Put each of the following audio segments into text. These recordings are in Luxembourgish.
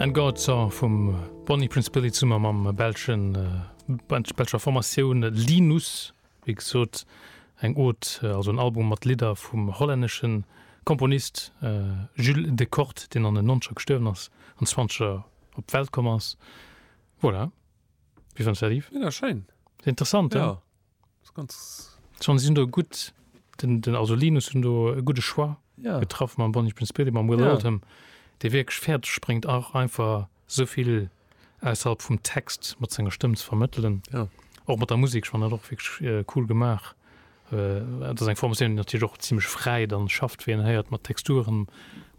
And God's Song vum Bonnie Prince Billy zummer mam belschen Band belscher Formatioun Linus, wéi gesot eng Od, also en Album mat Lidder vum hollännesche Komponist Jules Decourt, deen an den nonzeger gestuerwen ass an zwanzeger op d'Welt komm ass. Voilà, wéi fënns de dat Yves? Méga schéin! Interessant, hein? ass ganz. Schon si do gutt den den also Linus hunn do e gudde Choix ja. getraff mam Bonnie Prince Billy mam Will ja. Oldham, dee wierklech fäerdeg spréngt och einfach souvill ausserhalb vum Text mat senger Stëmm ze vermëttelen. Ja. Och mat der Musik schon net och wierklech äh, cool gemaach. Äh, dat ass eng Formatioun, déi natierlech och ziemlech fräi dann schafft, wéi en héiert mat Texturen,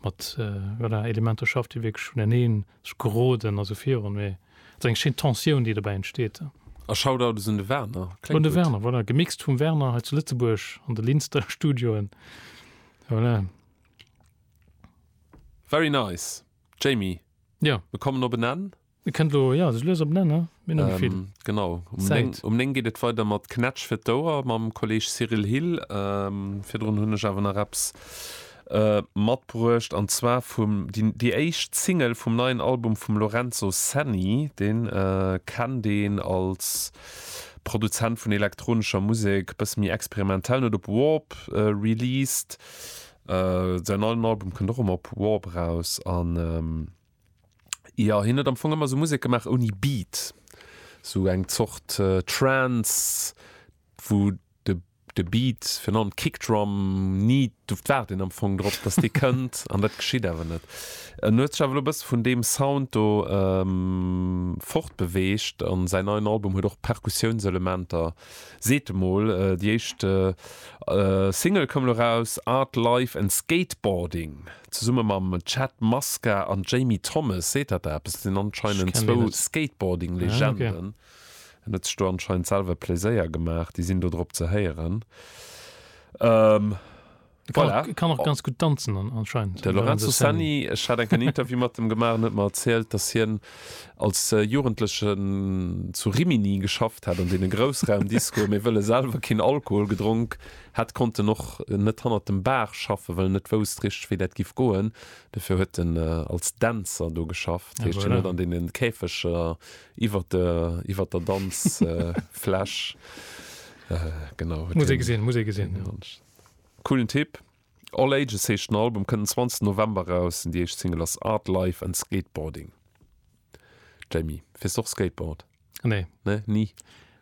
mat äh, voilà, Elementer schafft, déi wierklech vuneneen Sech geroden a sou virun, mee et ass eng schéin Tensioun, déi dobäi entsteet. A Shoutouts un de Werner, kléngt gutt. Un de Werner, voilà, gemixt vum Werner hei zu Lëtzebuerg an de Linster Studioen, voilà. Very nice, Jamie, jo, mir kommen op en Enn. Et kënnt elo, jo, sech lues op en Enn, ne? Mir hunn net méi vill. Genau, um 9, um 9 geet et weider mat Knätsch fir d'Ouer mam Kolleeg Cyril Hill. Virdrun hunn ech awer nach eppes matbruecht an zwar vum déi éischt Single vum neien Album vum Lorenzo Senni, deen kennt een als Produzent vun elektronescher Musek, bësse méi experimentellen, huet op Warp released, säin neien Album kënnt och ëm op Warp raus an jo hien huet am Fong ëmmer sou Musek gemaach ouni Beat, sou eng Zort Trance wou. de Beat, virun allem d'Kickdrum, ni, du waarden am Fong drop, datt dee kënnt an dat geschitt awer net. En huet sech awer elo e bësse vun deem Sound do fortbeweegt a säin neien Album huet och Perkussiounselementer, seet e mol. Déi éischt Single koum elo eraus, Art, Life and Skateboarding, zesumme mam Chad Muska an Jamie Thomas. Seet dat der eppes? Dat sinn anscheinend zwou Skateboarding-Legenden. En huet sech do anscheinend selwer Pléséier gemaach, déi sinn do drop ze héieren. E kann och, e kann och ganz gutt danzen an, anscheinend, de Lorenzo Lorenzo Senni. Senni. Ech hat enk en Interview mat em gemaach, en huet mer erzielt, datt hien als Jugendlechen zu Rimini geschafft hätt an deene Groussraumdiscoen, mee wëll e selwer keen Alkohol gedronk hätt, konnt en och net hannert dem Bar schaffen, well en net wousst richteg, wéi dat giff goen. Dofir huet en als Dänzer do geschafft, heescht, hien huet an deene Käfeger iwwert der iwwert der danz flash genau muss ee gesinn muss ee gesinn coolen tipp all ages heescht den album kënnt den zwanzegsten november eraus an déi éischt single ass art life and skateboarding jamie fiers de och skateboard nee nee ni